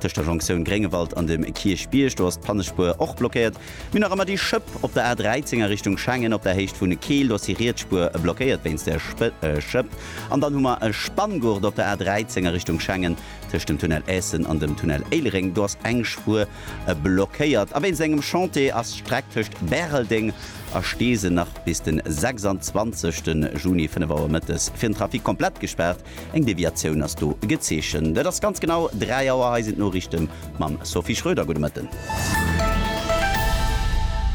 Tëscht der Jonktioun Gréngewald an dem Kierchbierg, do ass d'Pannespuer och blockéiert. Mir hunn nach ëmmer déi Schëpp op der A13 a Richtung Schengen op der Héicht vun Keel, do ass déi riets Spuer blockéiert wéinst där Schëpp. An dann hu mer e Spanngurt op der A13 a Richtung Schengen tëscht dem Tunnel Eessen an dem Tunnel Éilereng, do ass eng Spuer blockéiert. A wéinst engem Chantier ass d'Streck tëscht Bäreldeng a Steesel nach bis den 26 Juni 5 Auer mëttes fir den Trafic komplett gespaart. Eng Deviatioun ass do gezeechent. Et ass ganz genau 3 Auer. Hei sinn d'Noriichte mam Sophie Schroeder. Gudde Mëtten.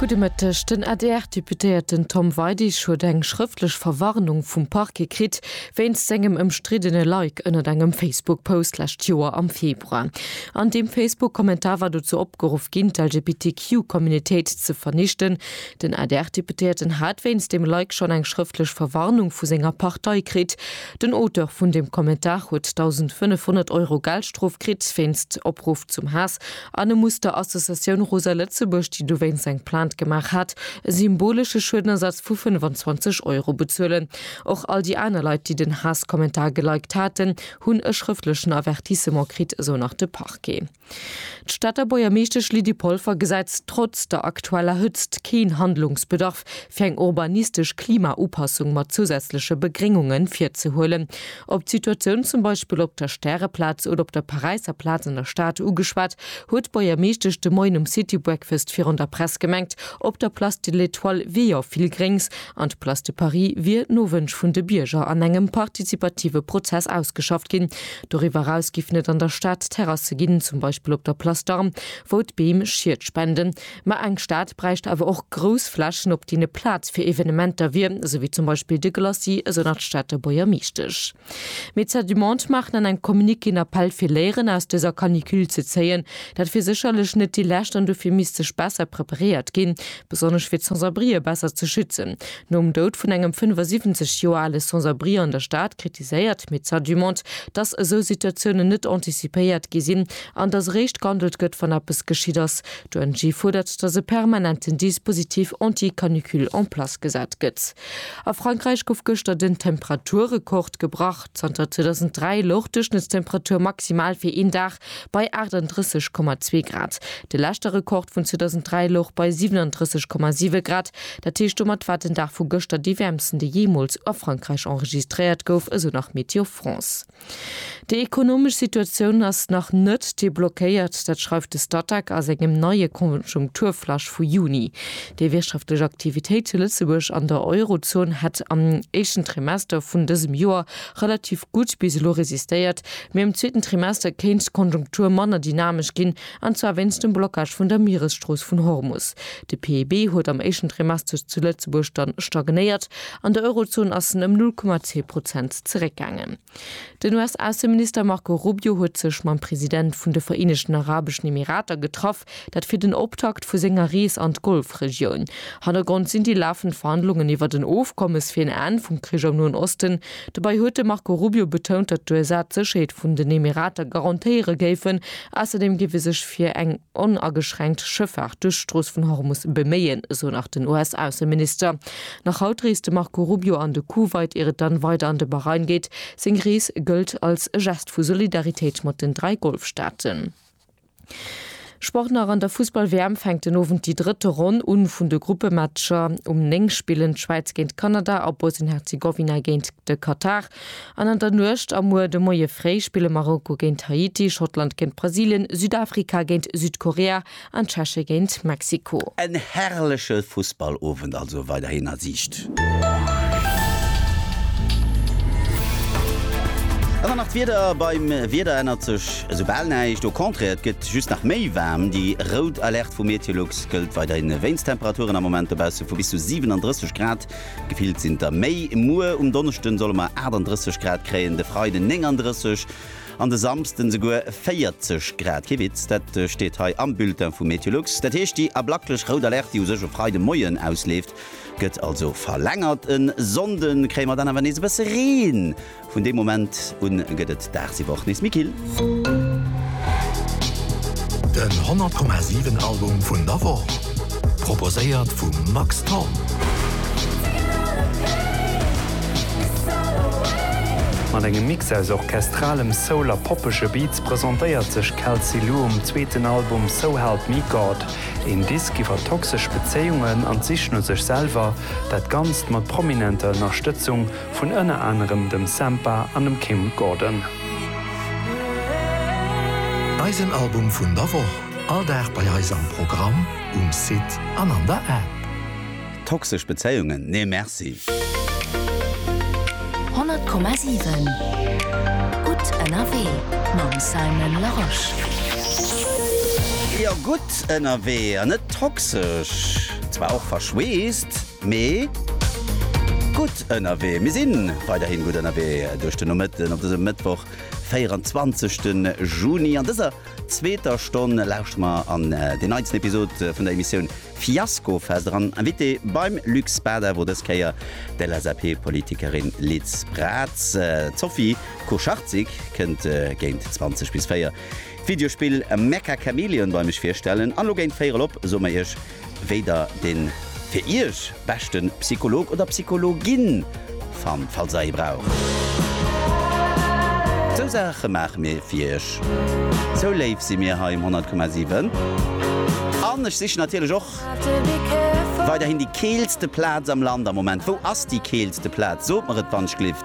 Gudde Mëtteg. Den ADR-Deputéierten Tom Weidig huet eng schrëftlech Verwarnung vum Parquet kritt, wéinst sengem ëmstriddene Like ënnert engem Facebook-Post lescht Joer am Februar. An deem Facebook-Kommentar war dozou opgeruff ginn, d'LGBTQ-Communitéit ze vernichten, Den ADR-Deputéierten hat wéinst deem Like schonn eng schrëftlech Verwarnung vu senger Partei kritt. Den Auteur vun deem Kommentar huet 1.500 Euro Geldstrof kritt wéinst Opruff zum Haass an e muss der Associatioun Rosa Lëtzebuerg, déi dowéinst eng Plainte gemaach hat, e symbolesche Schuedenersatz vu 25 Euro bezuelen. Och all déi aner Leit, déi den Haasskommentar geliked haten, hunn e schrëftlechen Avertissement kritt, esou nach de Parquet. D'Stater Buergermeeschtesch Lydie Polfer gesäit trotz der aktueller Hëtzt keen Handlungsbedarf, fir eng urbanistesch Klimaupassung mat zousätzleche Begréngunge virzehuelen. Op d'Situatioun zum Beispill op der Stäreplaz oder op der Paräisser Plaz an der Stad ugeschwat, huet d'Buergermeeschtesch de Moien um City Breakfast virun der Press gemengt, op der Place de l'Etoile wier jo vill Gréngs an d'Place de Paris wier no Wënsch vun de Bierger an engem partizipative Prozess ausgeschafft ginn, Doriwwer eraus giffen et an der Stad Terrasse ginn, zum Beispill op der Place d'Armes, wou d'Beem Schied spenden. Ma eng Stad bräicht awer och grouss Flächen, op deene Plaz fir Evenementer wier, esou wéi zum Beispill de Glacis, esou nach d'Stater Buergermeeschtesch. Médecins du Monde maachen an engem Communiqué en Appell fir Léieren aus dëser Canicule ze zéien. Dat wier sécherlech net déi lescht an dofir misst sech besser preparéiert ginn, besonnesch fir d'Sans-abrië besser ze schützen. Nom Doud vun engem 75 Joer ale Sans-abri an der Stad kritiséiert d'Médecins du Monde, datt esou Situatiounen net anticipéiert gi sinn an datt eréischt gehandelt gëtt, wann eppes geschitt ass. D'ONG fuerdert, datt e permanenten Dispositif anti-canicule en place gesat gëtt. A Frankräich gouf gëschter den Temperaturrekord gebrach. Zanter 2003 louch d'Duerchschnëttstemperatur maximal fir een Dag bei 38,2 Grad. De leschte Rekord vun 2003 louch bei 37,7 Grad. Dat heescht, domat war den Dag vu gëschter dee wäermsten, dee jeemools a Frankräich enregistréiert gouf, esou nach Météo France. Déi ekonomesch Situatioun ass nach net deblockéiert. Dat schreift de Statec a sengem neie Konjunkturflash vu Juni. Déi wirtschaftlech Aktivitéit zu Lëtzebuerg an der Eurozon hätt am éischten Trimester vun dësem Joer relativ gutt bis elo resistéiert, Mee am zweeten Trimester kéint d'Konjunktur manner dynamesch ginn, an zwar wéinst dem Blockage vun der Mieresstrooss vun Hormus. De PIB huet am éischten Trimester zu Lëtzebuerg dann stagnéiert, an der Eurozon ass en ëm 0,2 Prozent zeréckgaangen. Den US-Ausseminister Marco Rubio huet sech mam President vun de Vereenegten Arabeschen Emirater getraff. Dat fir den Optakt vu senger Rees an d'Golfregioun. Hannergrond sinn déi lafend Verhandlungen iwwert en Ofkommes fir en Enn vum Krich am Noen Osten. Dobäi huet de Marco Rubio betount, datt d'USA d'Sécherheet vun den Emirater garantéiere géifen. Ausserdeem géif ee sech fir eng onageschränkt Schëffaart duerch d'Strooss vun Hormus beméien, esou nach den US-Ausseminister. Nach haut reest de Marco Rubio an de Kuwait, ier et dann weider an de Bahrain geet. Seng Rees gëllt als e Gest vu Solidaritéit mat den dräi Golfstaaten. Sport nach An der Fussball-WM fänkt den Owend déi drëtte Ronn un vun de Gruppematcher. Um 9 spillen d'Schwäiz géint Kanada a Bosnien-Herzegowina géint de Katar. An an der Nuecht a muer de Moie fréi spille Marokko géint Haiti, Schottland géint Brasilien, Südafrika géint Südkorea an d'Tscheche géint Mexiko. En herrleche Fussballowend also weiderhin a Siicht. An dann nach d'Wieder, Beim Wieder ännert sech esou bal näischt, au contraire, et gëtt just nach méi waarm. Déi rout Alerte vu Meteolux gëllt weiderhin wéinst Temperaturen am Moment dobausse vu bis zu 37 Grad. Gefillt sinn der méi. Muer um Donneschden solle mer 38 Grad kréien, de Freiden 39 an de Samsden esouguer 40 Grad. Kee Witz, dat steet hei am Bulletin vu Meteolux. Dat heescht, déi ablaklech rout Alerte, déi u sech e Freide Moien ausleeft, Gëtt also verlängert. E Sonnde kréie mer dann awer nees e bësse Reen. Vun deem Moment u gëtt et daagsiwwer och nees méi kill. Den 100,7 Album vun der Woch, proposéiert vum Max Thorn. Mat engem Mix aus orchestralem Soul a poppege Beats presentéiert sech Kelsey Lu um zweeten Album So Help Me God. Een Disk iwwer toxesch Bezéiungen an d'Sich no sech selwer, dat Ganzt mat prominenter Ënnerstëtzung vun ënner anerem dem Sampha an dem Kim Gordon. Eisen Album vun der Woch, all Dag bei eis am Programm, um Site an an der App. Toxesch Bezéiungen, nee merci! 100,7 Gutt ënnerwee mam Simon Larosche. Jo, gutt ënnerwee an net toxesch. Zwar och verschweesst, mee gutt ënnerwee. Mir si weiderhi gutt ënnerwee duerch den Nomëtten op dësem Mëttwoch, 24. Juni. An dëser. zweeter Stonn lauschtere mer an déi neitsten Episod vun der Emissioun Fiaskofest eran. Invitée beim Luc Spada wor dës Kéier d'LSAP-Politikerin Liz Braz. D'Sophie Kucharczyk kënnt géint 20 bis 4 d'Videospill Mecha Chameleon bei mech virstellen. An elo géint 4 erop soe mer Iech wéi der den fir iech beschten Psycholog oder Psychologin fannt, falls der ee braucht. Sou Saachen maachen mir fir iech, sou léif sinn mir hei um 100,7. An ech sichen natierlech och weiderhin déi keelste Plaatz am Land am Moment. Wou ass déi keelste Plaatz? Sot mer et wann ech glift.